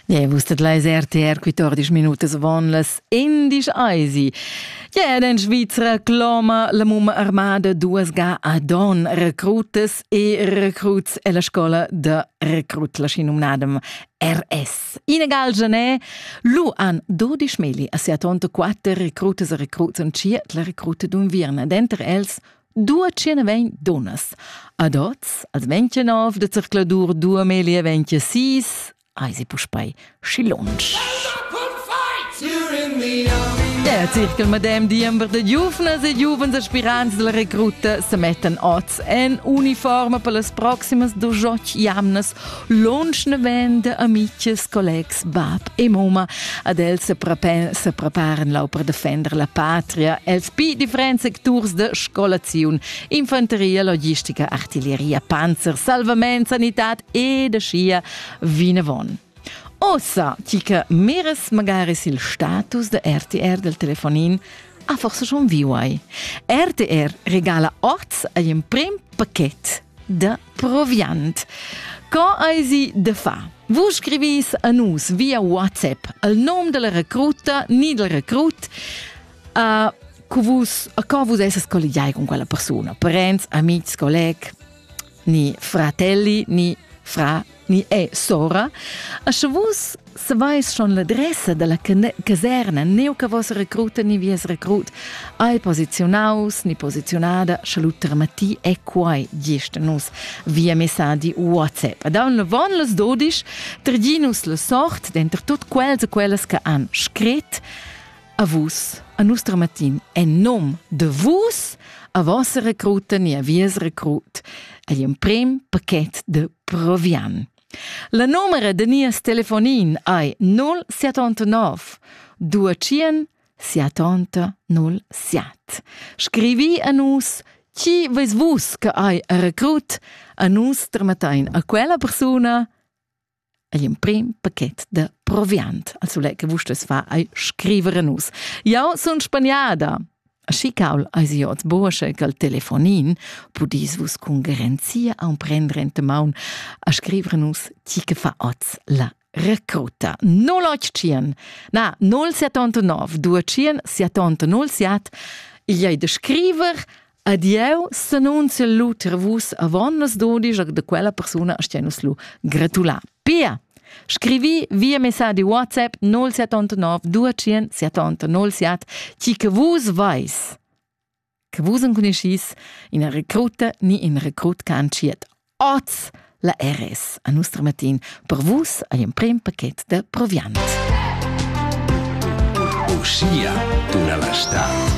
Yeah, vus tet leis RTR quittordisch minutas von las indisch eisi. Yeah, in Schweizer cloma la mumma armada duas ga ad on recrutas e recruts e la scola de recrut la schinum nadem RS. Ina gal Genet lu an 12 meli a sia tonta quatter recrutas e recruts en cia la recruta d'un virna. Denter els Dua tschena vegn dunnas. Ad oz, als 29 de zercladur 2026, hai sie puspei schi lunsch. Der Zirkel Madame Diember de Giufnas e giuvens aspirants della recruta se mettan oz en uniforma per las proximas dujoc jamnas Lunsch naven de amiches, collegs, bab e mumma. Ad els se, prepen, se preparen lau per defender la patria, els pi differents secturs de scolaziun, infanteria, logistica, artilleria, panzer, salvament, sanitad e de scia vinavon. Ossa, ti che meres magari il status de RTR del telefonin, ha forse schon viu ai. RTR regala oz ein prim paket de Proviant. Co eisi de fa? Vus scrivis a nus via WhatsApp il nom della recruta ni del recrut uh, cu vus, a co vus esses colligiai con quella persona, parents, amici, colleg, ni fratelli, ni fra ni è sora, a sche vus savais schon l'adressa dalla caserna, neu che vos recruta ni vies recrut hai posizionaus ni posizionada, sche lu termati è quai gist nus via messaggi WhatsApp. Ad aun von les dodisch, trdinus la sort, denter tut quels e quellas che han scrit, A vus, a nus dramatin, en nom de vus, a vos recruten e a vies recrut, agli un prim paquet de provian. La numero de nies telefonin ai 079 200 707. Scrivi a nus chi veis vus che ai recrut, a nus dramatein a quella persuna ei emprim paket da proviant, al sule che vustes fa ei scrivere nus. Jau sun spagnada. Aschi caul eis iots bursche cal telefonin, pudis vus cun garanzia emprendre ente maun a scrivere nus chi che fa oz la recruta. 085 na 079 200 700 il ei de scriver Ed jeu s'annunziel lu ter vus avon las dudisch da quella persuna a stia nus lu gratular. Pia, scrivi via messadi WhatsApp 079 200 707 ti che vus veis che vus enconuschis ina recruta ni in recrut che ha entschiet oz la RS a nostra matin per vus ei emprem paket da proviant. Uschia tuna la stad.